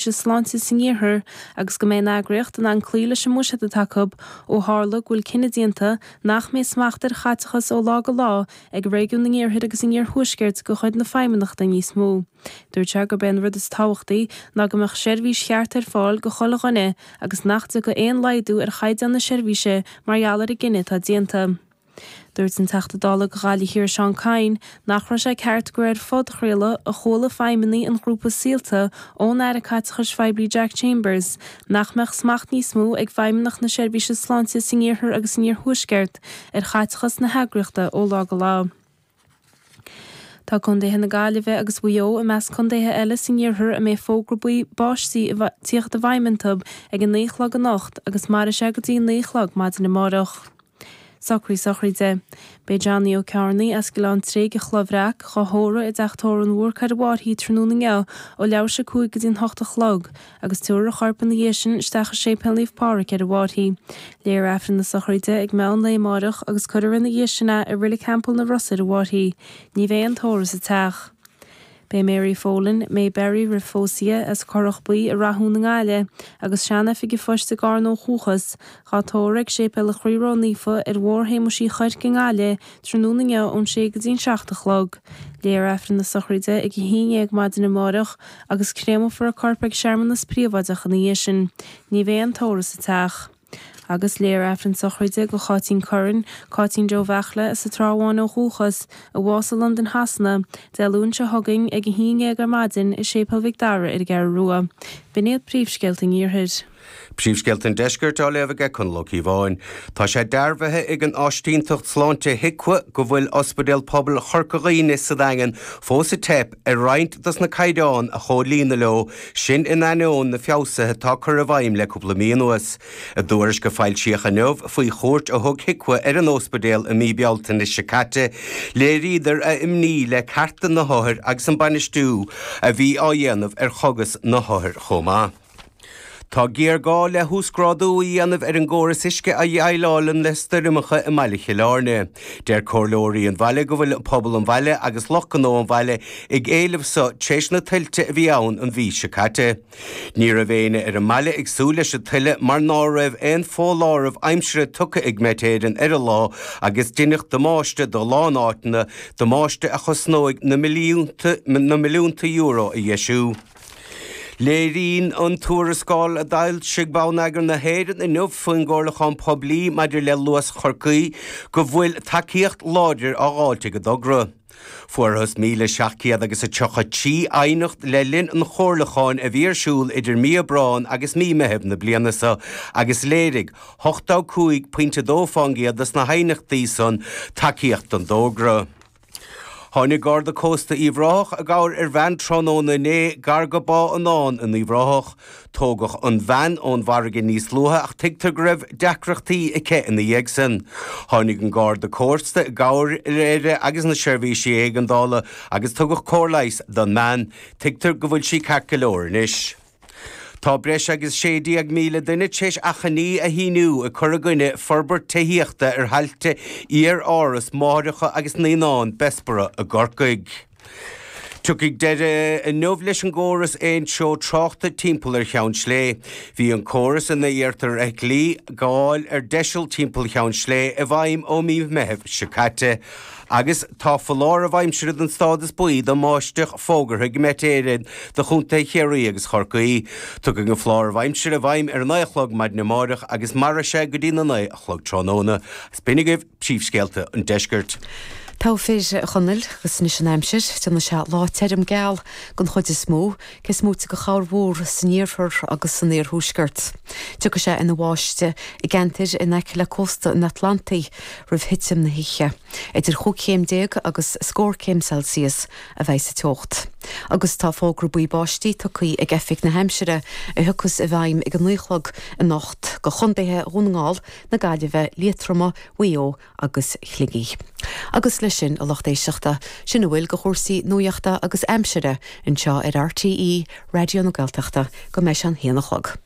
Seirbhíse Sláinte san Iarthar agus go mbeidh an eagraíocht in ann cloí leis an mbuiséad atá acu ó tharla go bhfuil cinneadh déanta nach mbeidh smacht ar chaiteachas ó lá go lá ag Réigiún an Iarthair agus an Iarthuaiscirt de chuid na Feidhmeannachta níos mó. Dúirt sé gurb é an rud is tábhachtaí ná go mbeadh seirbhís cheart ar fáil do chuile dhuine agus nach dtiocfadh aon laghdú ar chaighdeán na seirbhíse mar gheall ar an gcinneadh atá déanta. Dúirt an Teachta Dála do Ghaillimh Thiar Seán Kyne nach raibh sé ceart gur ar phodchraoladh a chuala feidhmeannaigh an ghrúpa Saolta ón Aire Caiteachais Phoiblí Jack Chambers nach mbeadh smacht níos mó ag Feidhmeannacht na Seirbhíse Sláinte san iarthar agus san iarthuaisceart ar chaiteachas na heagraíochta ó lá go lá. Tá Contaetha na Gaillimhe agus Mhaigh Eo i measc contaetha eile san iarthar a mbeidh fógra buí báistí tíocht i bhfeidhm iontu ag a naoi chlog anocht agus mairfidh sé go dtí naoi chlog maidin amárach. Socruithe sochraide. Beidh Johnny Ó Cearnaigh as Gleann Tréig an Chloch Bhreac dhá thórramh i dteach tórraimh an Bhúrcaigh ar an bhFairche tráthnóna inniu ó leathuair tar éis a cúig go dtí an hocht a chlog agus tabharfar a chorp ina dhiaidh sin isteach i Séipéal Naomh Pádraig ar an bhFairche. Léifear Aifreann na sochraide ag meán lae amáireach agus cuirfear ina dhiaidh sin é i Reilig Theampall na Rosa ar an bhFairche. Ní bheidh aon tórramh sa teach. Beidh Mary Folan, May Berry roimh phósadh di, as Corrach Buí i Rathún i nGaillimh, agus sean-oifig an phoist i gCarna ó dhúchas, dhá tórramh ag Séipéal an Chroí Ró Naofa ar Bhóthar Shéamuis Uí Chuirc i nGaillimh tráthnóna inniu ón sé go dtí an seacht a chlog. Léifear Aifreann na sochraide ag a haon dhéag maidin amárach agus créamófar a corp ag searmanas príobháideach ina dhiaidh sin. Ní bheidh aon tórramh sa teach. Agus léifear Aifreann sochraide do Cháitín Curran, Cáitín Joe Bheachla as an Trá Bháin ó dhúchas, a bhásaigh i Londain Shasana, Dé Luain seo chugainn ag a haon dhéag ar maidin i Séipéal Mhic Dara ar an gCeathrú Rua. B'in iad príomhscéalta an iarthair. Príomhscéalta an Deiscirt á léamh aige Conall Ó Cíobháin. Tá sé dearbhaithe ag an Áisínteacht Sláinte HIQA go bhfuil Ospidéal Pobail Chorca Dhuibhne sa Daingean fós ag teip ar roinnt dos na caighdeáin a chomhlíonadh leo, sin in ainneoin na feabhsaithe atá curtha i bhfeidhm le cúpla mí anuas. I dtuairisc a foilsíodh inniu faoi chuairt a thug HIQA ar an óspidéal i mí Bealtaine seo caite, léiríodar a imní le cearta na hothair agus an bainistiú a bhí á dhéanamh ar chogas na hothair chomh maith. Tá géarghá le huasghrádú a dhéanamh ar an gcóras uisce a dheighleáileann le stoirmeacha i mBaile Chill Airne. Deir comhairleoirí an bhaile go bhfuil pobal an bhaile agus lucht gnó an bhaile ag éileamh seo tar éis na tuilte a bhí ann an mhí seo caite. Ní raibh éinne ar an mbaile ag súil leis an tuile mar ná raibh aon foláireamh aimsire tugtha ag Met Éireann ar an lá agus deineadh damáiste do a lán áiteanna, damáiste a chosnóidh na milliúnta euro a dheisiú. Léiríonn an tuarascáil a d'fhoilsigh Bonneagar na hÉireann inniu faoin gcomhairliúchán poiblí maidir le Luas Chorcaí go bhfuil tacaíocht láidir á dh'fháilt ag an dtogra. Fuarthas 1,733 aighneacht le linn an chomhairliúcháin a bhí ar siúl idir mí Aibreáin agus mí Meithimh na bliana seo agus léirigh 85.2% de sna haighneachtaí san tacaíocht don dtogra. Tháinig Garda Cósta Uíbh Ráthach i gcabhair ar bhean tráthnóna inné gar go Bá Fhionáin in Uíbh Ráthach. Tógadh an bhean ón bhfarraige níos luaithe ach tuigtear go raibh deacrachtaí aici ina dhiaidh san. Tháinig an Garda Cósta i gcabhair uirthi agus na seirbhísí éigeandála agus tugadh cóir leighis don mbean. Tuigtear go bhfuil sí ceart go leor anois. Tá breis agus 16,000 duine tréis achainí a shíniú ag cur i gcoinne forbairt tithíochta ar thailte iar-áras máithreacha agus naíonán Bessborough i gCorcaigh. Tiocfaidh deireadh inniu leis an gcóras aon treo tráchta timpeall ar Cheann Slé. Bhí an córas ina iarrtar fheithiclí gabháil ar deiseal timpeall Cheann Slé i bhfeidhm ó mí Meitheamh seo caite. Agus tá foláireamh aimsire den stádas buí do bháisteach fógartha ag Met Éireann do Chontae Chiarraí agus Chorcaí. Tiocfaidh an foláireamh aimsire i bhfeidhm ar a 9 a chlog maidin amáireach agus mairfidh sé go dtí na 9 a chlog tráthnóna. Is b'in agaibh príomhscéalta an deiscirt. Go raibh maith agat a Chonaill, agus anois an aimsir. Déanfaidh sé lá tirim geal den chuid is mó. Cé smúite go háirithe san iarthar agus san iarthuaisceart. Tiocfaidh sé ina bháiste i gceantair in aice le cósta an Atlantaigh roimh thitim na hoíche. Idir chúig chéim déag agus scór céim Celsius a bheidh sa teocht. Agus tá fógra buí báistí tugthaí ag Oifig na hAimsire a thiocfas i bhfeidhm ag a naoi a chlog anocht go contaetha Dhún na nGall, na Gaillimhe, Liatroma, Mhaigh Eo agus Shligigh. Agus leis sin, a lucht éisteachta, sin a bhfuil de chúrsaí nuachta agus aimsire anseo ar RTÉ Raidió na Gaeltachta go mbeidh sé an haon a chlog.